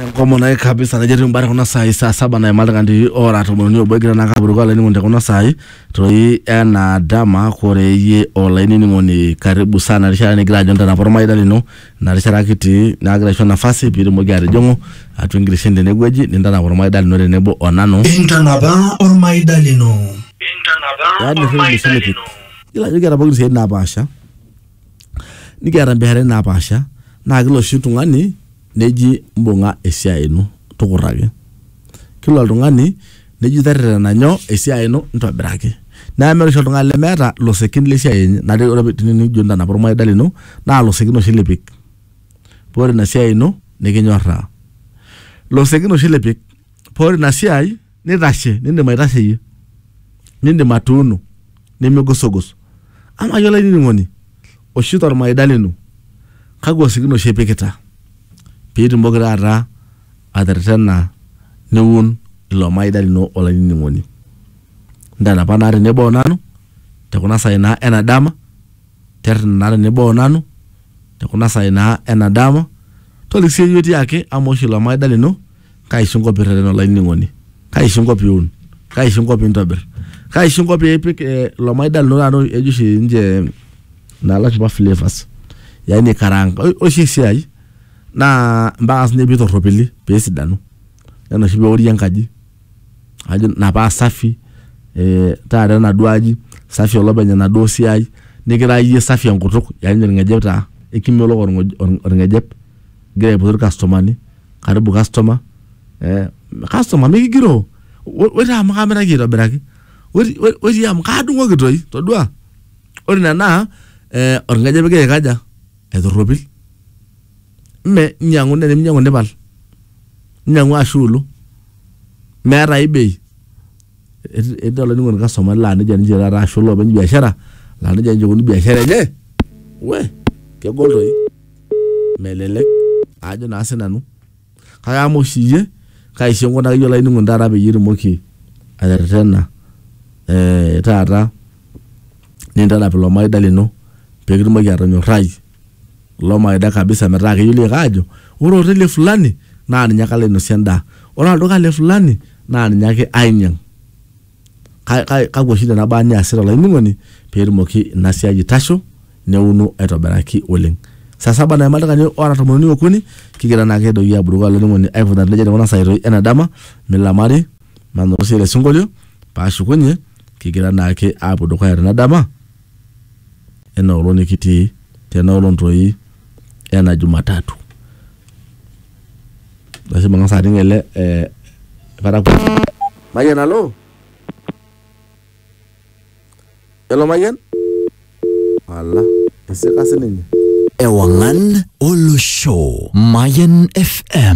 enkomono naye kabisa najo etii mbara kuna saai saa saba naima iltung'ani ora tomon uni obo egira naa kapuruko olainining'oni te kuna saai toi ena dama kore iyie olainining'oni karibu sana rishata nigira ajo ntanapa ormaida lino ina rishata kitii naagira aisho nafasi piitumoki atijing'u atua enkirishen tenewueji nintanapa ormaida lino tenebo o nanu intanapa ormaida lino yaani rrip misilitik yiolo ajo kiata pookin isiaitin napaasha nikiata mbiasharani napaasha naa kila oshi tung'ani neji mbung'a esiai ino tukurraki. Kila oltung'ani neji terrerena nyoo esiai ino ntobiraki. Naa meeta oshi oltung'ani lemeeta losekin le siai enye naa ore tenijo intanapa ormaida lino naa losekin oshi lipik paa ore ina siai ino nikinyoraa. Losekin oshi lipik paa ore ina siai... nitashe nindim aitasheyie nindim atuuno nimigusugos amaa iyie olainining'oni oshi tormaida lino kakwa sikin oshi ipikita piitumoki taata aterretena niun ilo maida lino olainining'oni ntanapa naa tenebo onanu te kuna saai naa ena dama terrena naa tenebo onanu te kuna saai naa ena dama toliki siyie itii ake amu eosh ilo maida lino. kaisho inko pirrerena olainining'oni kaisho inko piun kaisho inko pintobirr kaisho inko piipik eh, ilo maida lino taata ejo oshi ninche naa lashumpa flavors yaani aikaraanga Ore oshi esiai naa mpaka sinye pitorropili pesidanu nena oshi peori enkaji ajo ina paa safi eh, taata enaduo aji safi olopeny enaduo siai nikira iyie safi enkutuk yaani orng'ejep taa ekimelok orng'oj- orng'ejep. igira aipotu irkastomani karibu customer eh, customer mikigiroo "Wo- woi taa amu kaamiraki aitobiraki Woi- woi- woi tii amu kaadung'oki toi todua ore ina naa eh, orng'ejep igira aikaja aitorropil mme inyiang'u naa teninyiang'u nipal inyiang'u ashu ilu meeta ai bei Eti- etii olainining'oni customer laa nejia ninche taata ashu iloopeny biashara laa nejia ninche ikuni biashara enye we kegol toi melelek ajo naa sinanu kake ama oshi iyie kaisho enkunaki iyie olainining'oni taata peyie itumoki aterretena eh, taata nintanap ilo maida lino pekitumoki atonyorrai ilo maida kabisa metaa keyioloi ake aajo ore oteli e fulani naa ninye ake alo ainosie endaa ore olduka le fulani naa ninye ake ainyiang. Ka- ka- kakwa oshi nena baa niasita olainining'oni pee etumoki ina siai aitasho neuno aitobiraki oleng saa saba naima ildakikani oora tomon uni okuni kigira naake doi aburuko olainining'oni aikunari nejia tekuna saai toi ena dama milamari manoto sii ele sinkolio paashukunye kigira naake aapuo dukuya tena dama ena olong nikitii tena olong toi ena Jumatatu. Ashe mang'as aning ele eh, parakuoi. Mayian alo? Elo Mayian? Ala, isika sininye. Ewangan Olosho Mayan FM